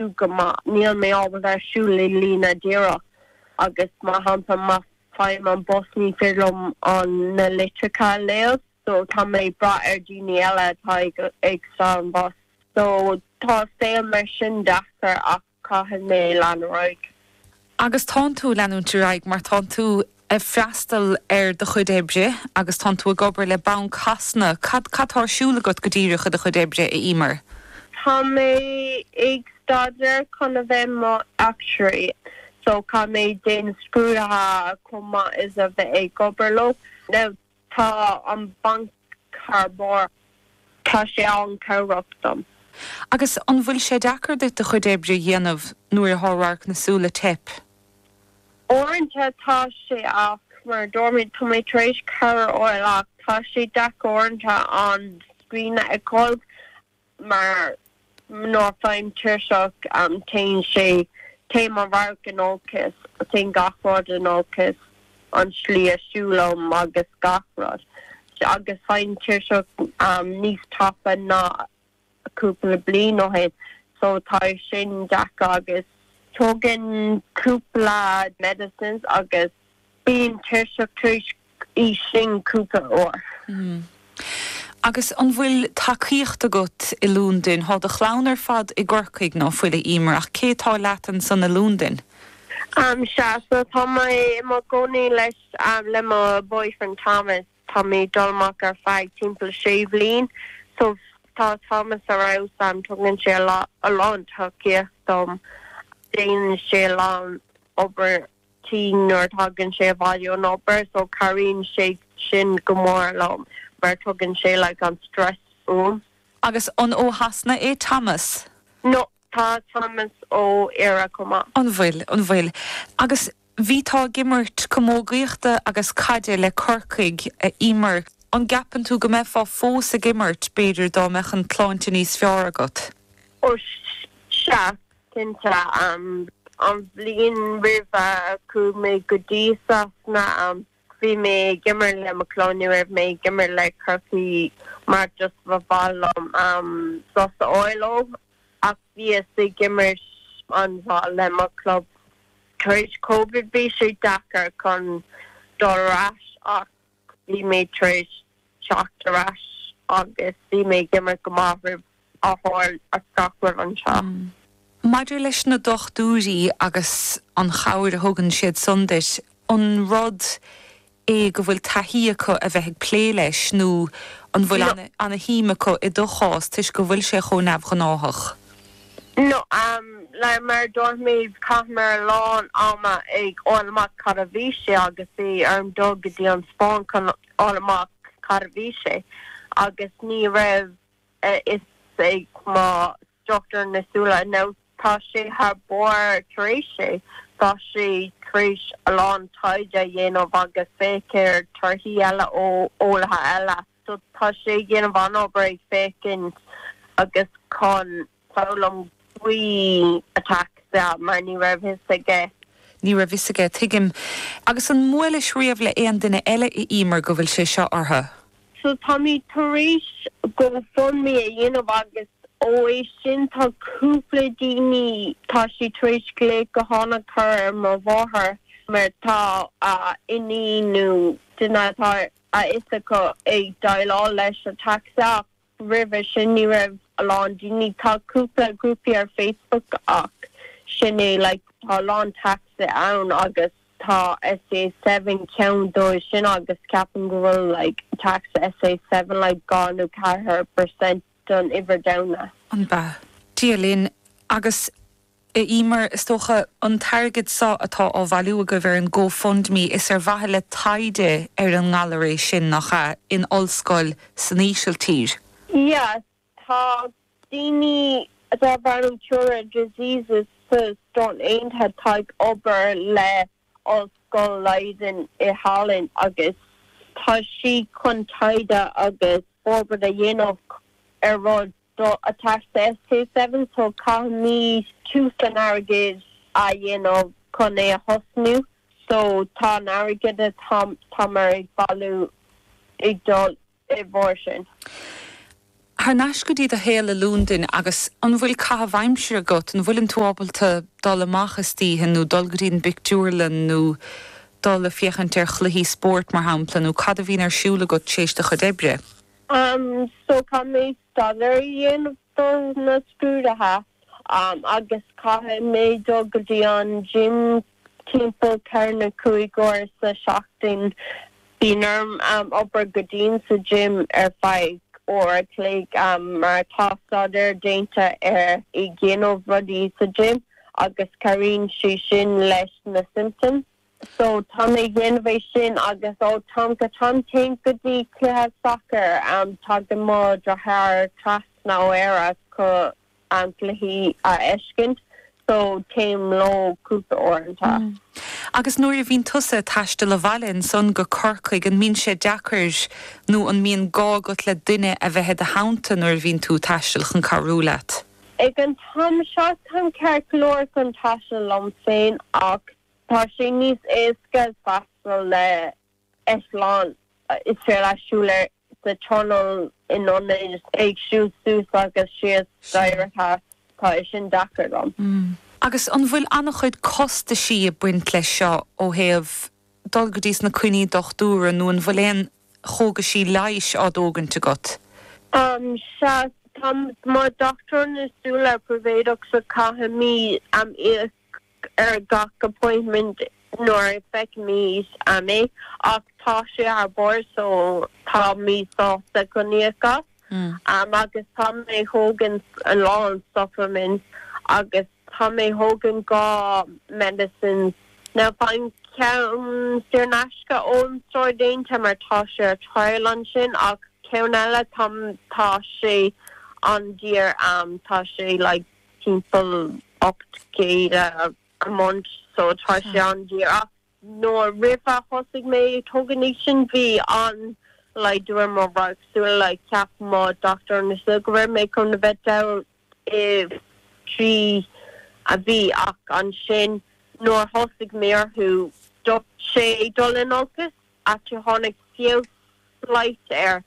go maith, níl mé ábalta a siúl le líne díreach agus mar shampla má fhaighim an bus ní féidir liom an na litreacha a léamh so tá mé ag brath ar daoine eile atá ag ag stad an bus so tá an saol mar sin deacair ach caithfidh mé lean ar aghaidh. agus tánn tú ag leanúint ar aghaidh mar tánn tú ag freastal ar do chuid oibre agus tánn tú ag obair le Banc Shasana, cad atá ar siúl agat go díreach i do chuid oibre, a Eimear? Tá mé ag staidéar chun a bheith i mo achtúire so caithfidh mé déanamh scrúdaithe chomh maith is a bheith ag obair leo. Tá an banc thar barr. Tá sé an-chabhrach dom. Agus an bhfuil sé deacair duit do chuid oibre a dhéanamh nuair atá radharc na súl ag teip? Uaireanta tá sé ach mar a dúirt mé, tá mé tar éis cabhair a fháil ach tá sé deacair uaireanta an scrín a fheiceáil mar nuair faighim tuirseach, téann sé, téann mo radharc in olcas, téann gach rud in olcas, an slí a siúlaim agus gach rud, agus faighim tuirseach níos tapa ná cúpla bliain ó shin, so tá sé sin deacair agus tógaim cúpla medicines agus. Bím tuirseach tar éis iad sin cúpla uair. Agus an bhfuil tacaíocht agat i Londain? Tá do chlann ar fad i gCorcaigh, ná fuil, a Eimear, ach cé tá leat ansan i Londain? Am sea so, tá mé i mo chónaí leis, le mo boyfriend Thomas. Tá mé ag dul amach ar feadh timpeall sé bhliain. So, tá Thomas ar fheabhas am, tugann sé a lán tacaíocht dom, déanann sé a lán obair tí, nuair a thagann sé abhaile ón obair so cabhraíonn sé sin go mór liom mar tógann sé like an stress uaim. Agus an ó Shasana é Thomas? No, tá Thomas ó Éire chomh maith. An bhfuil, an bhfuil. Agus bhíteá ag imirt camógaíochta agus caide le Corcaigh, a Eimear, an gceapann tú go mbeifeá fós ag imirt b'fhéidir dá mbeadh an tsláinte níos fearr agat? Ó sea, Cinnte, an bhliain roimh a chuaigh mé go dtí Sasana, bhí mé ag imirt le mo chlub, ní raibh mé ag imirt le Corcaigh mar just ba mhaith liom sos a fháil uaidh, ach bhíos ag imirt an-mhaith le mo chlub. Tar éis Covid bhí sé deacair chun dul ar ais ach. Bhí mé tar éis teacht ar ais agus bhí mé ag imirt go maith roimh a tharla gach rud anseo. Maidir leis na dochtúirí agus an chabhair a thugann siad san duit, an rud é go bhfuil taithí acu a bheith ag plé leis nó an bhfuil ana shuim acu i do chás toisc go bhfuil sé chomh neamhghnáthach? Nó, mar a dúirt mé, chaitheamar a lán ama ag fháil amach cad a bhí sé agus bhí orm dul go dtí an Spáinn chun fháil amach cad a bhí sé, agus ní raibh a fhios ag mo dhochtúir na súile nó, tá sé thar barr tar éis é, tá sé tar éis a lán taighde a dhéanamh agus féach ar thorthaí eile ó eolaithe eile. So tá sé ag déanamh an-obair ag féachaint agus chun foghlaim faoi ataxia, mar ní raibh fhios aige. Ní raibh fhios aige, tuigim. Agus an mbuailis riamh le aon duine eile a Emer go bhfuil sé seo orthu? So táimid tar éis GoFundMe a dhéanamh agus ó é sin tá cúpla daoine, tá siad tar éis glaoch gutháin a chur ar mo mháthair mar tá a iníon nó duine atá ar. a fhios acu ag déileáil leis ataxia ach roimhe sin ní raibh a lán daoine, tá cúpla grúpaí ar Facebook ach sin é, like tá a lán ataxia ann agus tá SCA Seven ceann dóibh sin agus ceapaim go bhfuil like ataxia SCA Seven like dhá nó ceathair per cent don uimhir domhanda. Dia linn agus. ii, mar, is dócha, an t-airgead so atá á bhailiú agaibh ar an GoFundMe, is ar mhaithe le taighde ar an ngalar é sin, nach ea, in ollscoil san Ísiltír? Sea, tá daoine darb ainm Cure Rare Diseases sna Stáit Aontaithe ag obair le Ollscoil Leiden i Holland agus tá siad chun taighde agus forbairt a dhéanamh ar rud. do ataxia SCA7 so caithfimid tús an airgid a dhéanamh chun é a thosnú so tá an airgead atá táimid ag bailiú ag dul i bhfabhar sin. Thar n-ais go dtí do shaol i Londain agus an bhfuil caitheamh aimsire agat, an bhfuileann tú ábalta dul amach istoíche nó dul go dtí an bpictiúrlann nó dul a' féachaint ar chluichí spóirt mar shampla nó cad a bhíonn ar siúl agat t'éis do chuid oibre? so caithfidh mé staidéar a dhéanamh do na scrúdaithe agus caithfidh mé dul go dtí an gym timpeall ceithre nó cúig uair sa tseachtain. Bíonn orm obair go dian sa gym ar feadh uair a chloig mar tá staidéar déanta ar dhéanamh rudaí sa gym agus cabhraíonn sé sin leis na symptoms. so táim ag dhéanamh é sin agus ó táim go táim téim go dtí cluiche sacair tagann mo dheartháir trasna ó Éire chun na cluichí a fheiscint so téim leo cúpla uaireanta. Agus nuair a bhíonn tusa a taisteal abhaile ansan go Corcaigh an mbíonn sé deacair nó an mbíonn gá agat le duine a bheith i do theannta nuair a bhíonn tú taisteal chun cabhrú leat? Ag an t-am seo táim ceart go leor chun taisteal liom féin ach Tá sé níos éasca taisteal le eitleán is fearr le siúl ar sa traenanna i n-ionad ag siúl suas agus síos staighrí so. Tá é sin deacair dom. Agus an bhfuil an-chuid costaisí a' baint leis seo ó thaobh dul go dtí sna coinní dochtúra nó an bhfuil aon chógaisí leighis á dtógaint agat? Sea, tá mo dochtúir na súile príobháideach, so caithimid em íoc ar gach appointment nuair a feicimid é ach tá sé thar barr so tá mé sásta chun íoc faoi agus tá mé a thógaint a lán supplements agus tá mé a thógaint dhá medicines now faighim ceann saor in aisce ón stiúrthóir déanta mar tá sé ar trial ansin ach ceann eile tá tá sé an-daor tá sé like timpeall ocht gcéad a month so tá sé an-daor ach. Nuair, roimh a thosaigh mé ag tógaint é sin, bhí an laghdú ar mo radharc súile, like, cheap mo dochtúir na súile go raibh mé chun a bheith dall i dtrí mhí ach ansin nuair a thosaigh mé orthu, stop sé ag dul in olcas. actually tháinig feabhas slight air,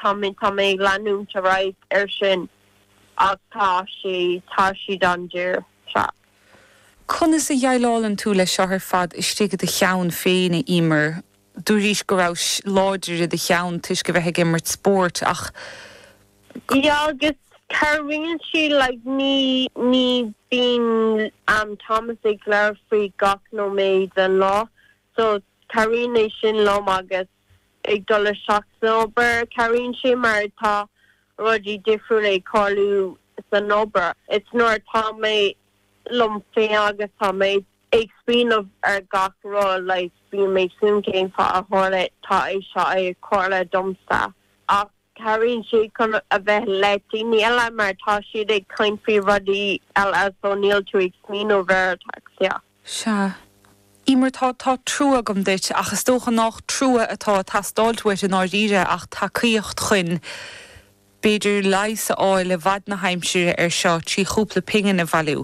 tá mé, tá mé ag leanúint ar aghaidh air sin ach tá sé, tá siad an-daor, yeah. Conas a dheighleálann tú leis seo ar fad istigh i do cheann féin, a Emer? Dúraís go rabhais láidir i do cheann toisc a bheith ag imirt spóirt ach. Yeah, agus cabhraíonn sé like ní, ní bíonn mo mháthair ag labhairt faoi gach nóiméad den lá So, cabhraíonn é sin liom agus ag dul isteach san obair, cabhraíonn sé mar tá rudaí difriúla ag tarlú san obair. Is nuair atá mé liom féin agus tá mé ag smaoineamh ar gach rud, like, bíonn mé ag smaoineamh cén fáth a tharla, tá é seo ag tharla domsa ach. Cabhraíonn sé chun a bheith le daoine eile mar tá siad ag caint faoi rudaí eile so níl tú ag smaoineamh ar ataxia. Sea. Emer, tá, tá trua agam duit ach is dócha nách trua atá a' teastáilt uait i ndáiríre ach tacaíocht chuin b'fhéidir leigheas a fháil le fad na haimsire ar seo trí chúpla pingin a bhailiú.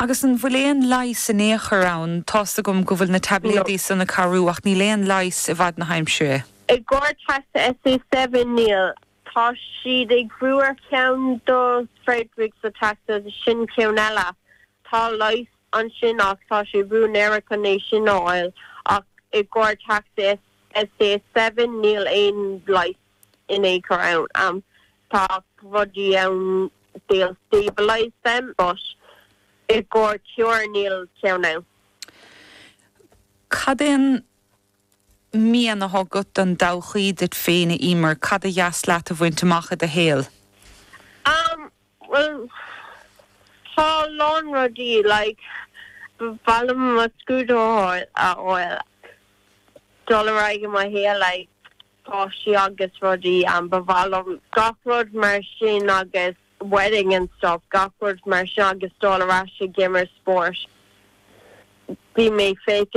Agus an bhfuil aon leigheas in aon chor ann? Tá's agam go bhfuil na taibléadaí san ag cabhrú ach níl aon leigheas i bhfad na haimsire. I gcomhair ataxia SCA Seven níl. Tá siad ag brú ar cheann do Friedreich's ataxia agus sin ceann eile. Tá leigheas ansin ach tá siad ag brú in Éirinn chun é sin a fháil ach i gcomhair ataxia SCA Seven níl aon leigheas. in aon chor ann. Tá rudaí ann they'll stabilise them but i gcóir cure níl ceann ann. Cad é an mian atá agat don dtodhchaí duit féin, a Emer? Cad ba dheas leat a bhaint amach i do shaol? Am, bhuel, tá a lán rudaí like ba mhaith liom mo scrúdú a fháil, dul ar aghaidh i mo shaol like. páistí agus rudaí. Ba mhaith liom gach rud mar sin agus wedding and stuff, gach rud mar sin agus dul ar ais ag imirt spóirt. Bhí mé ag féachaint